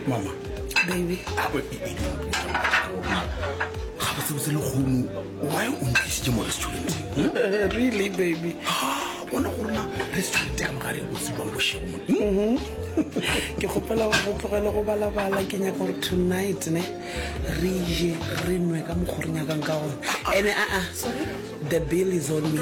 mama baby gabotsebotse le kgomo why o ntlisitse mo restaurant eh, really baby bona go rona restaurant ya mogare o tsebang bošemo mm-hmm. ke kgopela go tlogele go balabala ke nyaka gore tonight ne re je re nwe ka mokgore nyakang ka gone ene aa the bill is on me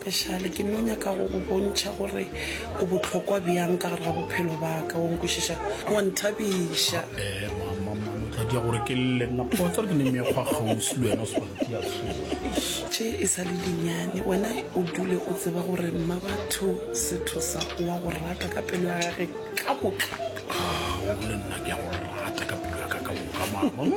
Pešale, ke no nyaka go go bontšha gore o bohlokwa bjang ka gare ga bophelo ba ka, o nkwešiša? Wa nthabiša. Ee, mama, mama, o tla dia gore ke lle nna kgotsa re ke ne mekgwa kgauswi le wena o se wa ntia tsoši. Tše e sa le dinyane, wena o dule o tseba gore Mmabatho Sethosa o a go rata ka pelo ya gage ka moka. Aa, le nna ke a go rata ka pelo ya ka ka moka, mama.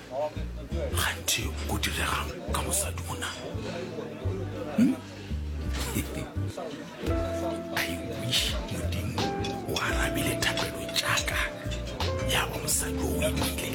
Kganthe o ko diregang ka mosadi o nang. Hmm? I wish modimo o arabile thapelo jaaka ya ba mosadi o o imile.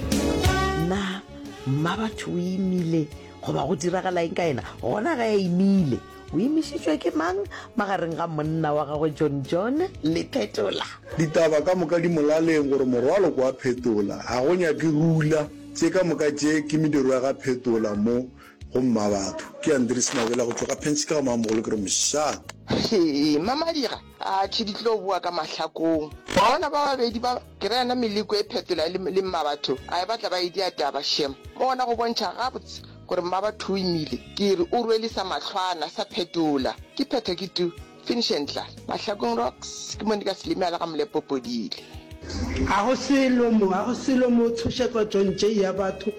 Na mma batho o imile goba go diragala eng ka ena gona ga ya imile? O imišitšwe ke mang magareng ga monna wa gagwe John John le Phetola? Ditaba ka moka di molaleng gore morwalo ke wa Phetola, ga go nyake rula. Tše ka moka tše ke mediro ya ga Phetola mo go Mmabatho. Ke Andries Mabela go tšwa ka Phentšhika ga Mamogolo ke re msha. Hee, Mmamadira, atšhe di tlo boa ka mahlakong. Wa bona ba babedi ba, ke ra yena Meleko e Phetola le, le Mmabatho, a e batla ba e dia taba, shem. Mo gona go bontšha gabotse Gore Mmabathoimile ke re o rwele sa mahlwana sa phetola. Ke phetho ke tu, finish and klaar. Mahlakong rocks ke mo Nikas Limela ka Molepo Podile. Ga go selo mo, ga go selo mo tshoše kwa John J ya batho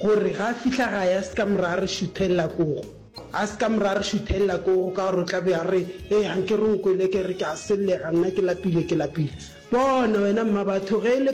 gore ga a fihla gae a se ka mora a re šuthelela kogo. A se ka mora a re šuthelela kogo ka gore o tla be a re, Hei, ga nke re nkwele ke re ke a sellega nna ke lapile, ke lapile. Bona wena Mmabatho ge e le.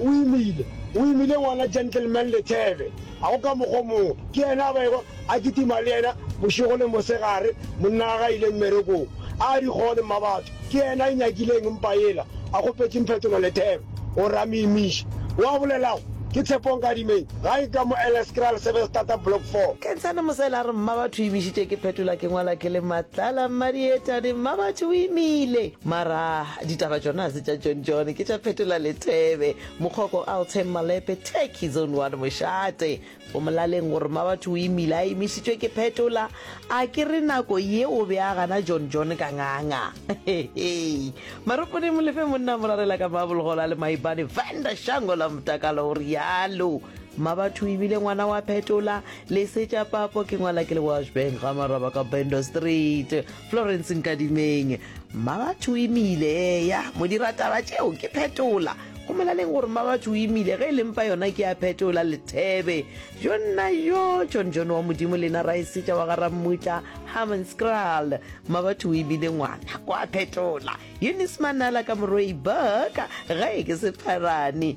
O imile, o imile ngwana Gentleman Lethebe. A go ka mokgwa o mongwe? Ke yena a bego a kitima le yena bošego le mosegare, monna wa ge a ile mmerekong. A di gone, Mmabatho. Ke yena a inyakileng mpa yela, a kgopetšeng phetolo Lethebe. O re a mo imiše. Wo a bolelago ke Tshepo Nkadimeng, gae ka mo Eleskraal Sevenstata Block Four. Kentshane Mosele a re, Mmabatho o imišitše ke phetola ke ngwala ke le Matlala Mmadietane. Mmabatho o imile. Mara. Ditaba tšona se tša John John ke tša Phetola Lethebe, Mokgoko Alteng Malepe, Turkey Zone 1 Mošate. Go molaleng gore ma batho o imile a imišitšwe ke Phetola, a ke re nako ye o be a gana John John ka nganga. Maropone Molefe monna morarela ka mabolgola le maibane Vanda Shango la Motakalo o rialo. Ma batho o imile ngwana wa Phetola, lesetša papo ke ngwala ke le Washburn ga maraba ka Bendo Street. Florence Nkadimeng, Mmabatho o imile, eya, mo dira taba tšeo ke phetola. Go molaleng gore Mmabatho o imile, ge e le mpa yona ke a phetola, Lethebe. Jo nna yo, John John wa Modimo le ena Raesetša wa ga Rammutla, Hammanskraal. Mmabatho o imile ngwana, o a phetola. Eunice Manala ka morwei, Burka, gae ke Sepharane.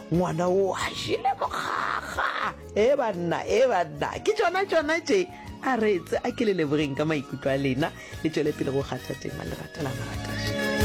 Ngwana wo a jele mokgakga. Ee banna, ee banna, ke tšona tšona tše. A reetse, a ke le lebogeng ka maikutlo a lena, le tšwele pele go kgatha tema, lerata la marataša.